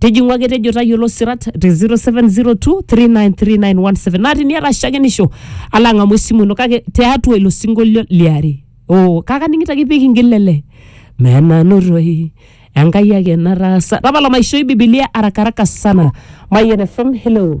tijing'u ake tejo tayiolo sirat te 0702393917 naa teniata shakenisho ala ang'amu esimu ino kake tiatua ilo sinkolio liare oo kake aning'ito ake pikingil lele menanotoi enkai ake nataasa tapala maishoi bibilia arakaraka sana mayian fm hello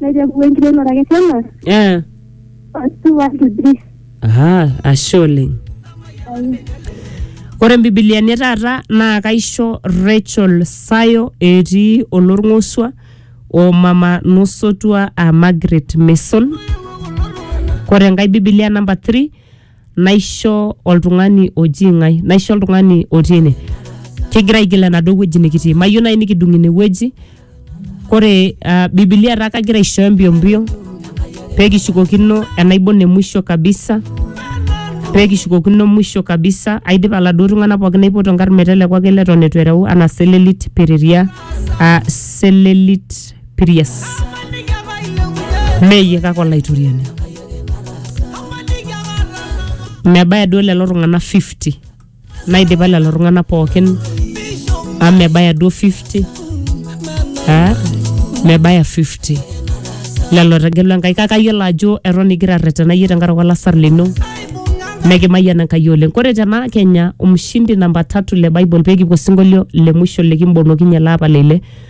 naiteru enkiremore ake tena Eh. otu watu dris Aha, ashe oleng. Ore mbibiliani taata naa kaisho Rachel Sayo etii olorng'osua o mama nosotua a Margaret Mason. Ore enkae bibilia namba 3 naisho oltung'ani oji ng'ae naisho oltung'ani otii ene kigira aigil enaduo wueji nikitii mayieu naaji nikidung ine wueji kore uh, bibilia taa kagira aishooyo mbio mbio pekishukokino enaibon emwisho kabisa pekishukokino mwisho kabisa aidipa laduo tung'anak pookin aipoto nkarn meteleku ake leton etu ereu anaa selelit piriria uh, selelit pirias meyie kake olaitoriani mebaya duo lelo tung'anak 50 naidipa lelo tung'anak pookin amu mebaya duo 50 Ah, mebaya 50 lelo tegelu enkai kake ayiolo ajo eton igira arretena iyie tenkaraki olasar lino nekimayian enkai oleng kore tena kenya umshindi namba tatu le bible pekipuo sinkolio le mwisho likimbonokinye laapa leile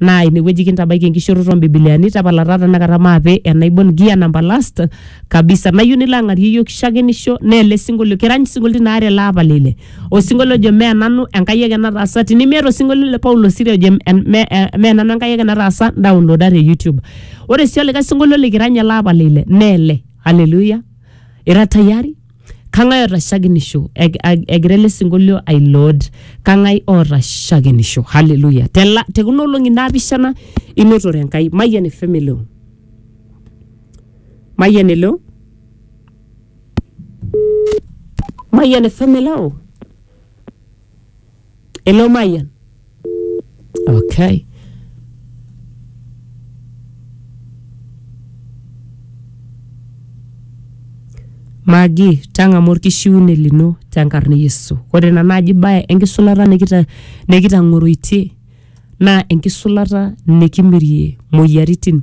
naa inewueji kintabaiki enkishooroto ombibiliani tapala taa tenakata maape enaibon gia namba last kabisa nayieu nilo ang'arie iyiok shakenisho naa ele sinkolio kirany isinkolioitin aare ele apa lile osinkolio ojo mee nanu enkai ake nataasa tinimiata osinkolio le paulo siri ojo em- me- eh, mee nanu enkai ake nataasa daonloda te youtube ore sii olikae sinkolio likirany ele apa lile naa ele aleluya ira tayari kang'ae oota shakenisho Eg- ag- egira ele sinkolio ai lord kang'ae oota shakenisho haleluya Tela- tekuna olong'i naapishana inotore enkai mayian efemelo mayian elo mayian efemelo Ele Mayian. Okay. Magi, tang'amu orkishiune lino tenkarna e Yesu. Ore ina naaji bae enkisulata nikita nikitang'oroitie naa enkisulata nikimirie moyiaritin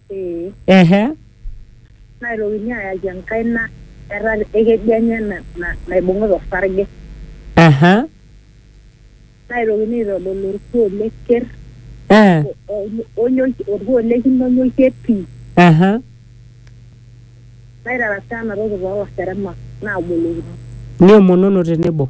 Ee. Ehe. Naitokini ayaki enkaina eeta ekeju enye naibung'ita osarge. Aha. Naitokini aitodol olkuo le ker. Eh. Olkuo le kine onyokie pii. Aha. Naitarasaa ena toki too laseremak naabolokino. Niomonono tenebo.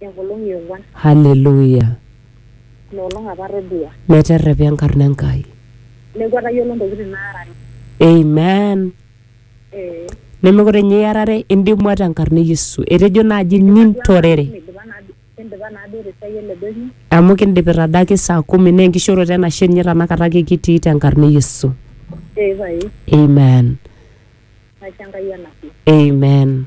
Enkolong e ong'uan. Haleluya! Ina olong apa atodua. Meterrepa enkarna Enkai. Neeku atayiolo ntokitin naarare. Amen. Ee. Nemekure ninye iarare, indimua tenkarna e Yesu. Etejo naaji nintorere. Kindipa naa duo- kindipa naa duo te siai ele doinyio. Amu kindipita adake saa kumi naa enkishooroto enashe ninye tenakata ake kitii tenkarna e Yesu. Ee pae. Amen. Naisho Enkai enashe. Amen.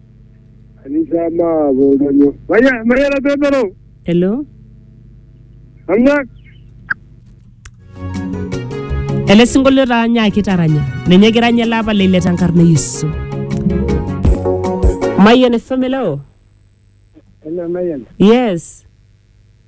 Anisa ma bo danyo. Maya maya la bebero. Hello? Amna Ele sinkolio taa nyaaki taranya. Ninye egira ninye ele apa leile tenkarna e Yesu. Mayian FM hello? ena mayan. Yes.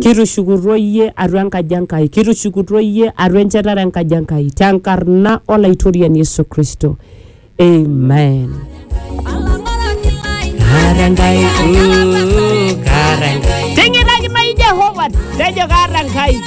Kitushukutuo iyie atua enkaji Enkai, kitushukutuo iyie atua enchetare enkaji Enkai tenkarna Olaitoriani Yesu Kristo. Amen. Kaata Enkai, uh, kaata Enkai. Ting'iraki nai Jehova, tejo kaata Enkai.